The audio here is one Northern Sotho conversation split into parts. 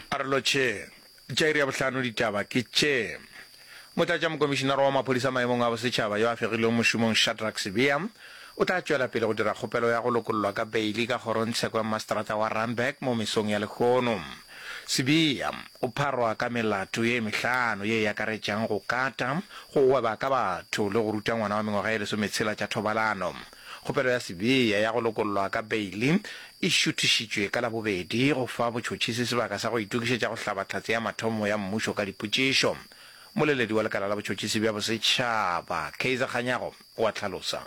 A re lo tšee. Tša iri ya bohlano ditaba ke tše. Motlatšamokomišinara wa Maphodisa maemong a Bosetšhaba yo a fegilweng mošomong Shadrack Sibiya o tla tšwela pele go dira kgopelo ya go lokollwa ka beili ka kgorongtsheko ya mmaseterata wa Randburg mo mesong ya lehono. Sibiya o pharwa ka melato ye mehlano ye e akaretšang go kata, go gweba ka batho le go ruta ngwana wa mengwaga ye lesometshela tša thobalano. Kgopelo ya Sibiya ya go lokollwa ka beili e šuthišitšwe ka Labobedi go fa botšhotšhisi sebaka sa go itokišetša go hlaba Tlhatse ya Mathomo ya Mmušo ka dipotšišo. Moleledi wa Lekala la Botšhotšhisi bja Bosetšhaba, Kaizer Kganyago, o a hlalosa.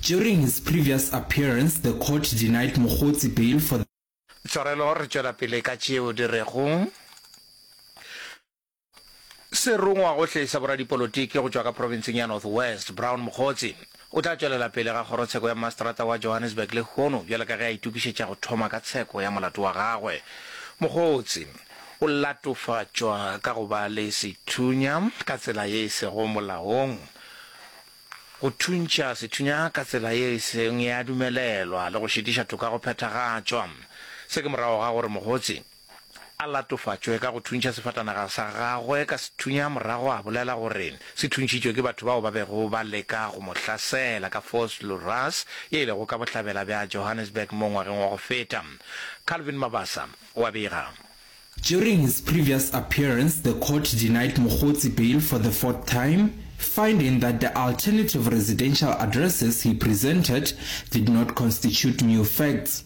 During his previous appearance, the court denied Mogotsi bail for the. Tshwarelo re tšwela pele ka tšeo di rego. Serongwagohle sa boradipolotiki go tšwa ka provinseng ya North West, Brown Mokgotsi, o tla tšwelela pele ga kgorotsheko ya mmaseterata wa Johannesburg lehono bjale ka ge a itokišetša go thoma ka tsheko ya molato wa gagwe. Mokgotsi, o latofatšwa ka go ba le sethunya ka tsela ye e sego molaong, go thuntšha sethunya ka tsela ye e seng ya dumelelwa le go šitiša toka go phethagatšwa. Se ke morago ga gore Mokgotsi, a latofatšwe ka go thuntšha sefatanaga sa gagwe ka sethunya morago a bolela gore se thuntšhitšwe ke batho bao ba bego ba leka go mo hlasela ka Force Luras ye e lego ka bohlabela bja Johannesburg mo ngwageng wa go feta. Calvin Mabasa o a bega. During his previous appearance, the court denied Mogotsi bail for the fourth time, finding that the alternative residential addresses he presented did not constitute new facts.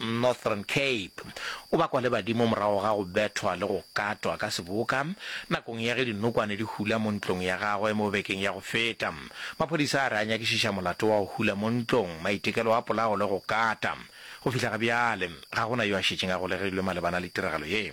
Northern Cape, o bakwa le badimo morago ga go bethwa le go katwa ka seboka nakong ya ge dinokwane di hula mo ntlong ya gagwe mo bekeng ya go feta. Maphodisa a re a nyakišiša molato wa go hula mo ntlong, maitekelo a polawo le go kata. Go fihla ga bjale, ga go na yo a šetšeng a golegilwe malebana le tiragalo ye.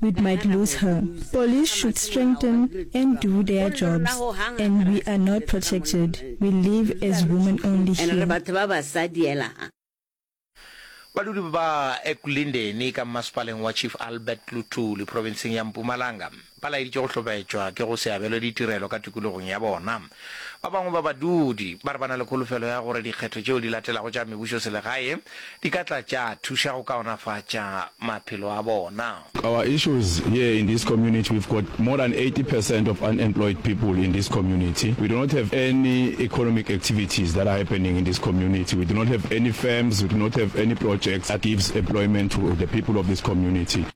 we might lose her. Police should strengthen and do their jobs and we are not protected, we live as women only here. Badudi ba Ekulindeni ka mmasepaleng wa Chief Albert Luthuli profenseng ya Mpumalanga ba laeditše go hlobetšwa ke go se abelwe ditirelo ka tikologong ya bona. Ba bangwe ba badudi ba re ba na le kholofelo ya gore dikgetho tšeo di latelago tša mebušoselegae di ka tla tša thuša go kaonafatša maphelo a bona. Our issues here in this community we've got more than 80 percent of unemployed people in this community, we do not have any economic activities that are happening in this community, we do not have any firms, we do not have any projects that gives employment to the people of this community.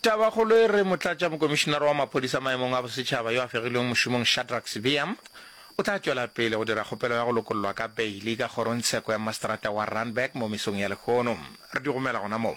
tabakgolo e re motlatša mokomišinara wa maphodisa maemong a bosetšhaba yo a fegilweng mošomong shadrack sebeam o tla tšwela pele go dira kgopelo ya go lokollwa ka beile ka kgorongtsheko ya masterata wa runberg mo mesong ya lehono re di romela gona moo